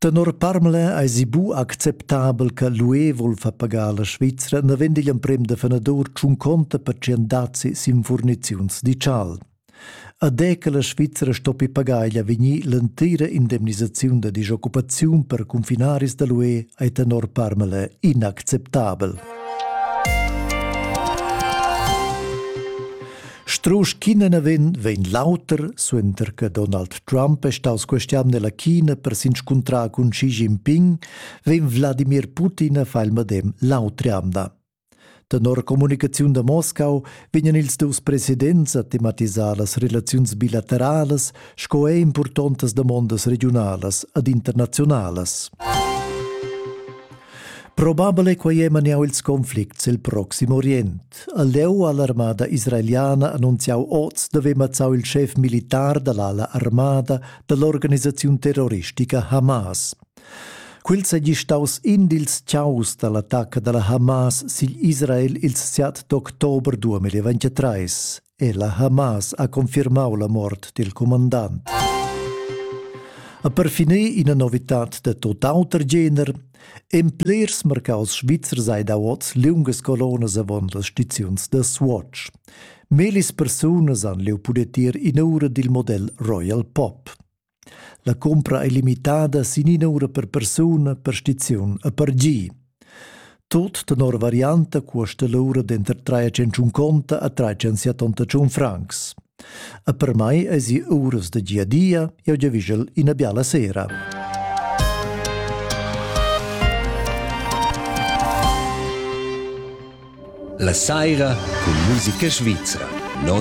Tenor Parmelin eisi bu acceptabel che l'UE vul far pagar la Svizra naven digl emprem da fenadur tschun conta per tschien dazi sin furniziuns digital. Ad è che la Svizra stoppi pagar igl avegnir l'entira indemnisaziun da disoccupaziun per confinaris da l'UE ai tenor Parmelin inacceptabel. Strusch ch'ina vegn, vegn l'auter, suenter che Donald Trump è staus questian nella China per s'inscuntrar cun Xi Jinping, vegn Wladimir Putin a far il medem l'autre amda. Tenor comunicaziun da Moscau vegnan ils dus presidents a tematisar las relaziuns bilateralas sco er importantas damondas regionalas ad internazionalas. Probabile quai è maniau ils conflicts il proxim Orient. ha leu all'armada israeliana annunziau oz d'haver mazzau il schef militar dall'ala armada dall'organisaziun terroristica Hamas. Quel seigi staus in dils ciaus dall'attacca dalla Hamas sigl Israel ils 7 d'october 2023. e la Hamas ha confirmau la mort dil comandant. A per finir ina novitad de totauter gener, en plers mercaus Svizzer sei da oz liungas colonas avon las stiziuns da Swatch. Melis persunas han leu pudet ir in ura dil model Royal Pop. La cumpra ei limitada sin ina ura per persuna per stiziun e per gi. Tut tenor varianta cuosta l'ura denter trai e tschentschun conta a trai tschensiatonta tschun francs. E per mai eisi uras da gia dia, jeu giavischel ina biala sera. La saira cun musica svizra, non